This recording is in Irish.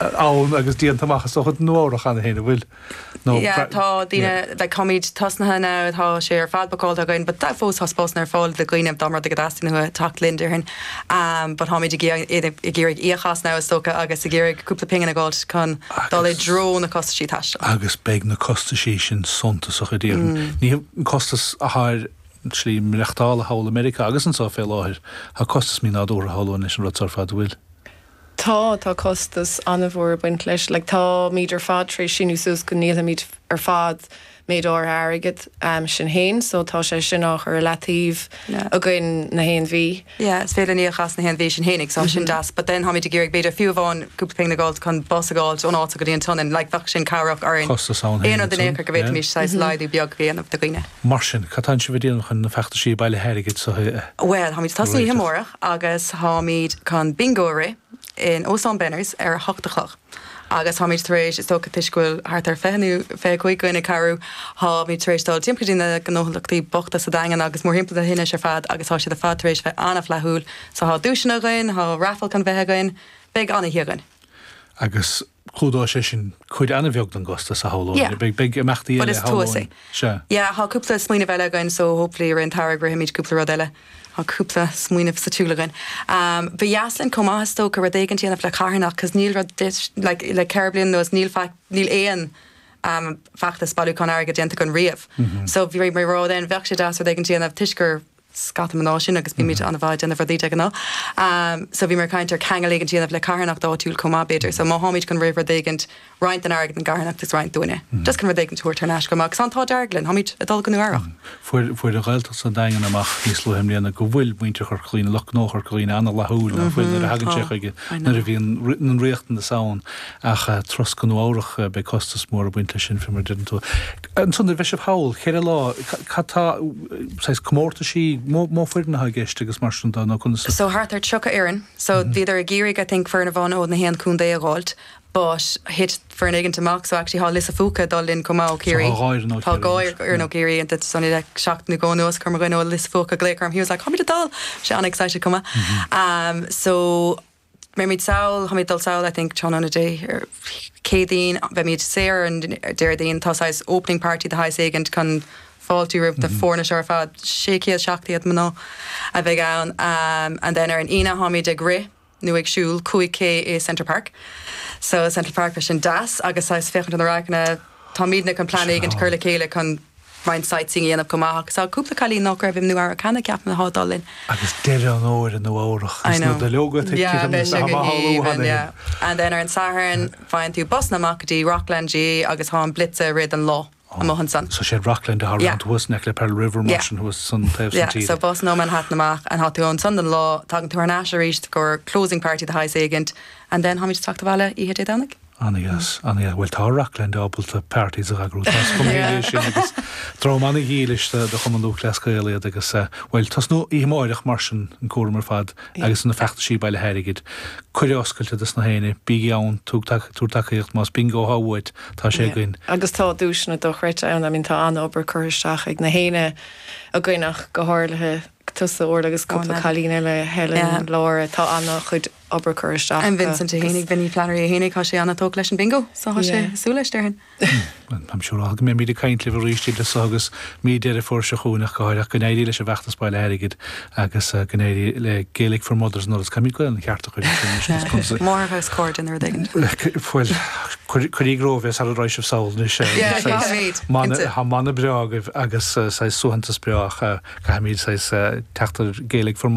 ann agus déanta amach as do chuid Nua-Eabhrac cheana féin, a bhfuil? nó Yeah, tá daoine, like táimid tosnaithe now, tá sé ar fad bucáilte againn, but tá fós, tá spásanna ar fáil do dhaoine dá mba rud é go dteastaíonn uathu teacht linn, déarfainn, um, but táimid ag iarraidh, ag iarraidh íoc as now, is dócha, agus ag iarraidh cúpla pingin a dh'fháilt chun dul i dtreo na costaisí taistil. agus beidh na costaisí sin suntasach, a déarfainn. Is é an costas atá ar slí maireachtála thall i Meiriceá agus anso fé láthair, tá costas mínádúrtha ag siúl leis an rud seo ar fad, a bhfuil? Tá, tá costas an-mhór ag baint leis. Like táimid ar fad tar éis síniú suas go ndíolfaimid ar fad méid áirithe airgid, sin fhéin, so tá sé sin á chur i leataobh againn na haon mhí. Yeah, is féidir ní a chas na haon mhí, sin fhéin, like tá sin deas, but then táimid ag iarraidh b'fhéidir fiú amháin cúpla pingin a dh'fháilt chun bus a dh'fháilt ón áit seo go dtí an tSionainn, like bheadh sin cabhrach dúinn, Costas ann aon fhéin rud in aon ansan, chor go yeah. bhféadfaimis saghas laghdú beag a dhéanamh do dhaoine. Mar sin, cad tá sibh ag déanamh chun na feachtaisí bailithe airgid seo a Bhuel, táimid ag tosnú oíche amárach. agus táimid chun Bingo a rith in Óstán Benners ar a hocht a chlog agus táimid tar éis, is dócha toisc go bhfuil thart ar fiche nó fiche cúig againn ag cabhrú, táimid tar éis dul timpeall go dtí na gnóthlachtaí bochta sa Daingean agus mórthimpeall na leithinse ar fad agus tá siad ar fad tar éis bheith an-fhlaithiúil so tá duaiseanna againn, tá raifil chun bheith againn, beidh an-oíche againn. Agus clúdóidh sé sin cuid an-bheag don gcostas, a shamhlóinn. Yeah. Beidh, beidh imeachtaí But eile, is tú a shamhlóinn. say. Sea. Yeah, tá cúpla smaoineamh eile againn, so hopefully i rith an tsamhraidh rithimid cúpla rud eile. Tá cúpla smaoineamh sa tsiúl againn. Um, ba dheas linn chomh maith is dócha rud éigin déanamh le carthanacht, cos níl rud dis- like, le ceithre bliana anuas níl fa- níl aon um, feachtas bailiúchán airgid déanta againn riamh. So bhíomar ag rá then bheadh sé deas rud éigin déanamh toisc gur scata mná sinn agus bímid ana-mhaith ag déanamh rudaí de ghnáth um so bhíomar ag caint ar ceangal éigin dhéanamh le carthanacht áitiúil chomh maith b'fhéidir so má tháimid chun rith rud éigin roinnt den airgead don gcarthanacht is roinnt dúinne just chun rud éigin tabhairt thar n-ais chomh maith agus an t-ádh dearg linn tháimid ag dul go Nua Eabhrac fuair fuair an Ghaeltacht is an Daingean amach níos luaithe mbliana go bhfuil muintir Chorca Dhuibhne lucht gnó Chorca Dhuibhne ana fhlaithiúil nó fial nuair a thagann sé chuige nuair a bhíonn an riachtanas ann ach turas go Nua Eabhrac beidh costas mór ag baint leis sin fé mar a deir tú Ansan dar le Seán Pól, ceithre lá, cad tá, saghas comórtaisí, an mó foireann atá i gceist agus mar sin de nó conas? So thart ar 30 fhoireann, so bhíodar ag iarraidh I think foireann amháin ó na haon contae a dh'fháilt but thit foireann éigint amach so actually tá Lios a' Phúca ag dul linn chomh maith ó Chiarraí. So tá dhá fhoireann ó Chiarraí. Tá dhá fhoireann ó Chiarraí and it's only like seachtain go leith anuas chuir mo dhuine ó Lios a' Phúca glaoch orm he was like 'Táimid ag dul', bhí sé ana-excited chomh maith. So. mbeimid sall, táimid ag dul sall, I think, tráthnóna Dé Céadaoin, beimid saor ar an Déardaoin, tá saghas opening party de shaghas éigint chun fáiltiú roimh na foirne seo ar fad, sé chéad, seacht gcéad mná a bheidh ann, and then ar an Aoine táimid ag rith nó ag siúl cúig K i Central Park, so Central Park, beidh sin deas agus saghas féachaint ar na radharcanna, táimidne chun plean éigint a chur le chéile chun roinnt sightseeing a dhéanamh chomh maith ach tá cúpla cailín nách raibh i Nua-Eabhrac cheana ceapaim atá ag dul linn. Agus deireadh an fhómhair i Nua-Eabhrac agus na duilleoga ag titim agus nach amach á lúa na himbe. And then ar an Satharn faigheann tú busanna amach go dtí Rockland GA agus tá an blitz ag rith an lá amuigh ansan. So siad Rockland a tharraingt thuas in aice le Pearl River mar sin thuas sa taobh san tíre. Yeah so busanna ó Manhattan amach and tá tú ansan don lá tagann tú thar n-ais aríst i gcomhair closing party de shaghas éigint and then táimid ag teacht abhaile oíche Dé Domhnaigh. An-dheas, an-dheas. Bhuel, tá Rockland ábalta parties a eagrú, tá a fhios agam é sin agus dream an-dhílis do Chumann Lúthchleas Gael iad agus, bhuel, tosnú oíche amáireach mar sin, an cúram ar fad agus na feachtaisí bailithe airgid, cuireadh oscailte dos na héinne, bígí ann, tug, tabhair tacaíocht, más Bingo atá uait, tá sé againn. Agus tá duaiseanna dochreidte ann, I mean tá an-obair curtha isteach ag na héinne againn ach go háirithe. tusa Orla agus cúpla cailín eile, Helen, Laura, tá ana chuid obair curtha isteach. I'm Vincent é fhéinig Vinny Flannery é fhéinig, tá sé ana tógtha leis an bingo so tá sé ag súil leis déarfainn. I'm sure go mbeimid ag caint libh arís idir so agus mí Deireadh Fómhair seo chugainn ach go háirithe ach go n-éirí leis an bhfeachtas bailithe airgid agus go n-éirí le Gaelic for Mothers and Others caithfimid Gaelainn cheart Máthair agus Cairde nó rud éigin. Bhuel, cuirigí romhaibh é sara raghaidh sibh sall anois. Tá mana breá agaibh agus saghas suaitheantas breá. Caithfimid saghas teacht ar Gaelic for.